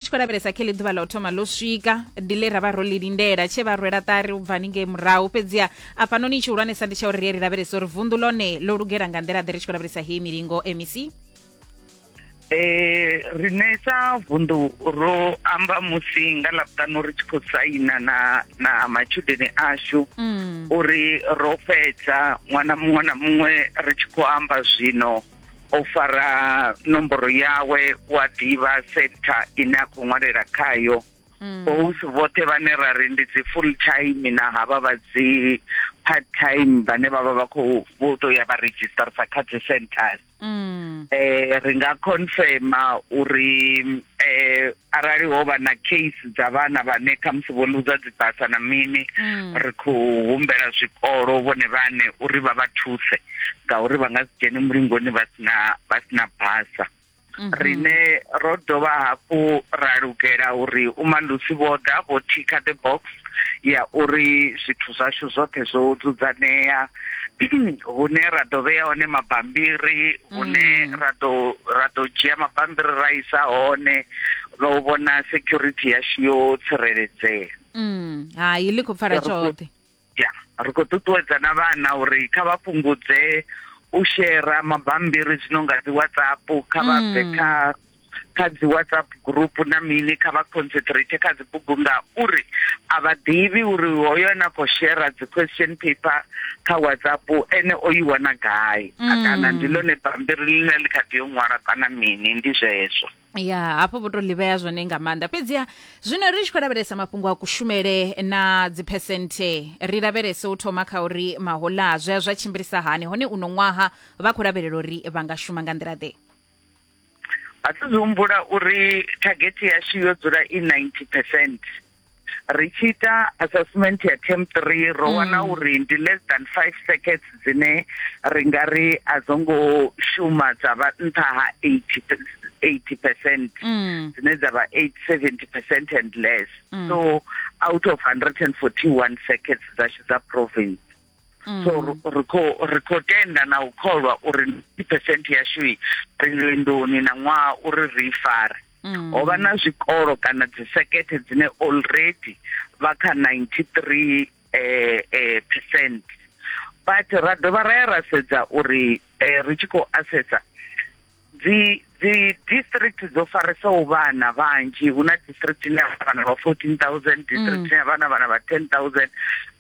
tshi khou lavhelesa khe ḽi ḓuvha ḽa u thoma ḽo swika ndi ḽe ra vha ro ḽi lindela tshe vha rwela ṱari u bva haningei murahu fhedziha afhanoni i tshihulwanesa ndi tsha uri ri ri lavhelesa uri vunḓu ḽone ḽo lugela nga nḓila ḓe ri tshi khou lavhelesa heyi milingo mec eh rine sa vundu ro amba musi nga ḽavhutanu ri tshi khou saina na na matshudeni ashu mm. uri ro fhedza ṅwana muṅwe na muṅwe ri tshi khou amba zwino o fara nomboro yawe wa ḓivha sector ine a khou ṅwalela khayo mm. bosi vhoṱhe vhane ra ri ndi dzi full time na havha vha dzi part time vhane vha vha vha khou vho tou ya vha register sa kha dzi centers mm. eh ri nga confirma uri eh arali ho vha na case dza vhana vhane khamusi vho luza dzibasa na mini mm. ri khou humbela zwikolo vhone vhane uri vha vha thuse ngauri vha nga si dzhene mulingoni vha sina vha sina basa mhm. rine ro dovha hafhu ra lugela uri umalusi vho ḓa vho thikha the box ya uri zwithu zwashu zwoṱhe zwo dzudzanea hune ra ḓo vhea hone mabambiri hune mm. ra ḓo ra ḓo dzhia mabambiri ra isa hone no vhona security yashu yo tsireledzea mm. hai ḽi khou pfala tshoṱhe ya ri khou ṱuṱuwedza na vhana uri kha vha fhungudze u shera mabambiri zwino nga dzi whatsapp kha vha bve mm. kha kha dzi whatsapp group na mini kha vha concentrate kha dzibugu nga uri a vha ḓivhi uri hoyo na khou shera dzi question paper kha whatsapp ene o i wana gai mm. kana ndi ḽone bambiri ḽine ḽi kha ḓi yo ṅwala kana mini ndi zwezwo ya hafho vho to ḽivhea zwone nga maanḓa fhedziha zwino ri tshi khou lavhelesa mafhungo a kushumele na dziphesenthe ri lavhelese u thoma kha uri mahola zwi a zwa tshimbilisa hani hone uno ṅwaha vha khou lavhelela uri vha nga shuma nga nḓila ḓe a thi zwi humbula uri thagethi yashu yo dzula i 90 percent ri tshi ita assessment ya term three ro mm. wana uri ndi less than five seconds dzine ri nga ri a dzo ngo shuma dza vha nṱha ha eighty eighty percent mm. dzine dza vha eight seventy percent and less mm. so out of hundred and forty one seconds dzashu dza province Mm. so ri khou ri khou tenda na u kholwa uri ndi percent yashu i ri lwendoni na ṅwaha uri ri i fare mm. ho vha na zwikolo kana dzisekethe dzine already vha kha 93 eh, eh, percent but ra dovha ra ya ra sedza uri eh, ri tshi khou assessa dzi dzi district dzo faresaho vhana vhanzhi hu na district ine ya vhana vha 14000 district ine ya vhana vhana vha 10000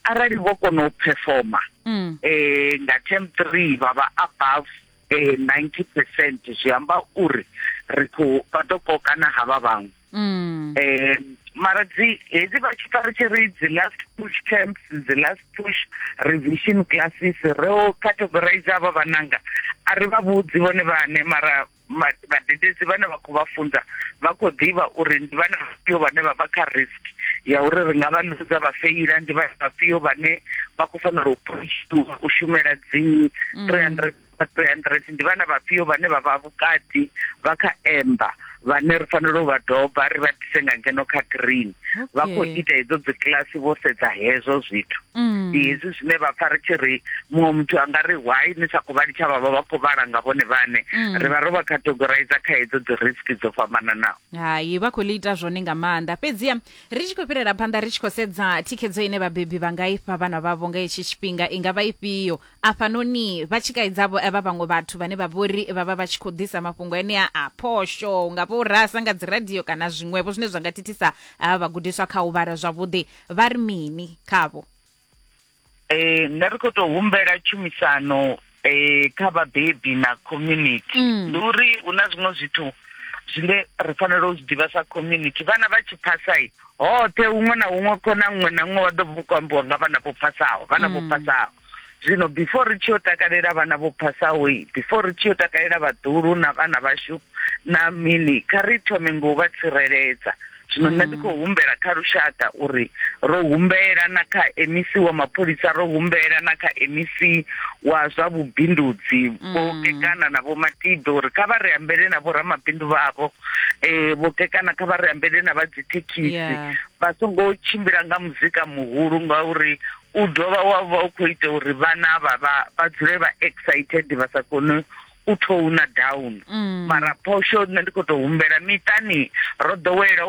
arali vho kona u performa mm. eh nga term 3 vha vha above eh 90% zwi amba uri ri khou vha ḓo kokana ha vha vhaṅwe mm. eh mara dzi hedzi vha tshi fari tshi ri dzi last push camps dzi last push revision classes ro categorize ava vananga a ri vha vhudzi vhone vhane mara vhadededzi vhane vha khou vha funza vha khou ḓivha uri ndi vhana vhafhio vhane vha vha kha risk ya uri ri nga vha luza vha feila ndi vhana vhafhio vhane vha khou fanela u shumela dzi 300 vha 300 ndi vhana vhafhio vhane vha vha vhukati vha kha emba vhane ri fanela u vha doba ri vha dise nga ngeno kha green vha khou ita hedzo dzi kilasi vho sedza hezwo zwithu mm. ndi hezwi zwine vha pfa ri tshi ri muṅwe muthu a nga ri why ni sa khou vha litsha vhavha vha khou vhala nga vhone vhane mm. ri vha ro vha categorize kha hedzo dzi risk dzo fhambananaho hai vha khou ḽi ita zwone nga maanḓa fhedziha ri tshi khou fhirela phanḓa ri tshi khou sedza thikhedzo ine vhabebi vha nga ifha vhana vhavho nga hetshi tshifhinga i nga vha ifhio afhanoni vha tshi kaidzavho vha vhaṅwe vhathu vhane vha vhori vha vha vha tshi khou ḓisa mafhungo enea a phosho nga vho rasa nga dzi radio kana zwiṅwevho zwine zwa nga thithisa havha vhagudiswa kha u vhala zwavhuḓi vha ri mini khavho eh nṋe ri khou tou humbela tshumisano eh kha vhabebi na community mm. ndi uri hu na zwiṅwe zwithu zwine ri fanela u zwi ḓivha sa community vhana vha tshi phasai hoṱhe huṅwe na huṅwe khona ṅwe na ṅwe wa ḓo vha u khou ambiwa nga vhana vho phasaho vhana vho mm. phasaho zwino before ri tshi yo takalela vhana vho phasaho before ri tshi yo takalela vhaḓulu na vhana vhashu na mini kha ri thome ngo vha tsireledza zwino nṋe ndi mm. khou humbela kha lushaka uri ro humbela na kha mec wa mapholisa ro humbela na kha mec wa zwa vhubindudzi mm. vho kekana na vho matibe uri kha vha ri ambele na vho ramabindu vhavho um vho kekana kha vha ri ambele na vha dzithekhisi vha songo tshimbila nga muzika muhulu ngauri u dovha wa vha u khou ita uri vhana vha vha vha dzule vha excited vha sa kone u thouna down mm. mara phosho nṋe ndi khou tou humbela miṱani ro ḓowela u